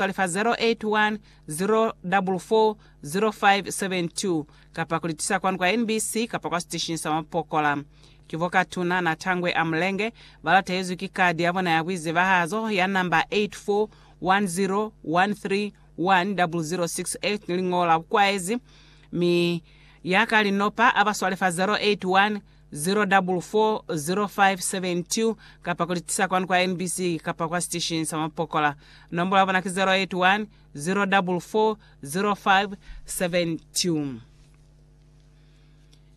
Tolifa 081 044 0572 kapa kulitisa kwanu kwa NBC kapa kwa siteshini sa mapokola. Ki bo Katuna na Tangwe a Mulenge balatahezwi ki kadi yabona ya buizebahazo ya namba 84101310068 ni liñolo la bukwaezi, mi ya ka linopa abaswale fa 081 0440572 kapa ku li tisa kwanu kwa MBC kapa kwa sitesheni sa mapokola. Nombola ya bona ki 0810440572.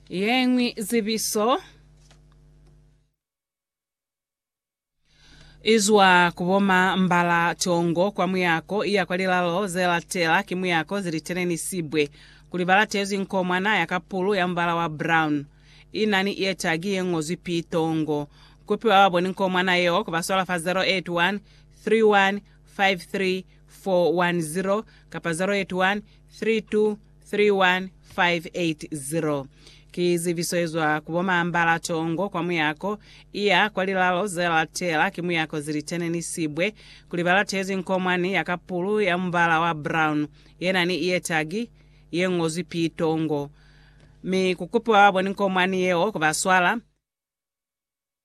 Yeñwi zibiso. Izwa ku bo ma mbala tongo kwa muyako iya kwa lilalo ze latela ki muyako zili teleni sibwe kuli ba latezwi nkomwana ya kapulu ya mubala wa brown ina ni ear tag ye ngozwi P tongo kupi ba ba boni nkomwana yeo ku ba swala fa 081 31 53 410 kapa 081 32 31580 Ki zibiso yezwa ku bo Mambala Tongo kwa muyako iya kwa lilalo ze latela ki muyako zilitene ni sibwe kuli ba latezi nkomwani ya kapulu ya mubala wa brown yena ni iye tagi ye ngozwi P Tongo mi ku kupiwa ba boni nkomwani yeo ku ba swala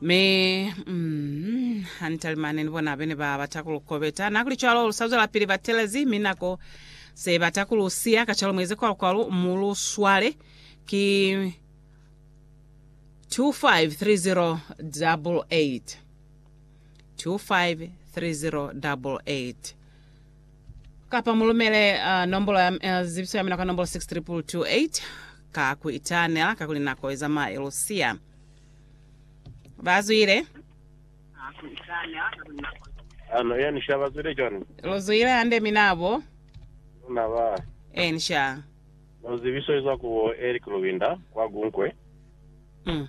Mi, mm, hanitalimani ni bona bene ba bata ku lu kobeta. Na kuli cwalo, lu sa zwelapili ba telezi, mi nako se bata ku lu siya. Kacwalo mueze kwalu-kwalu, mu lu swale. Ki 253088. 253088. kapa mulumele uh, nombolo ya uh, zibiso ya mina ka nombolo 62228 ka ku itanela ka kuli nako izamaya ilusiya bazwile Ano ya nisha bazwile jwani? luzwile hande minabo Luna ba ensha no zibiso izwa kubo Eric Lubinda kwa Gunkwe. mm.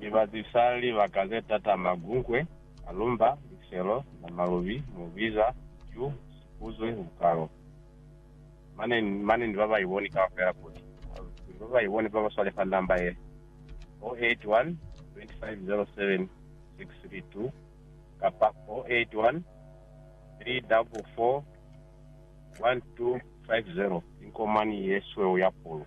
Ni bazisa libaka ze tata, magunkwe, malumba, liselo, namalubi, mubiza, ju, sikuzwe, bukalo. Mane, mane ni ba ba iboni kaufela kuli, kuli ba ba iboni ba ba swalefa namba ye, 081 2507 632 kapa 081 344 1250. Inkomani ye sweu ya pulu.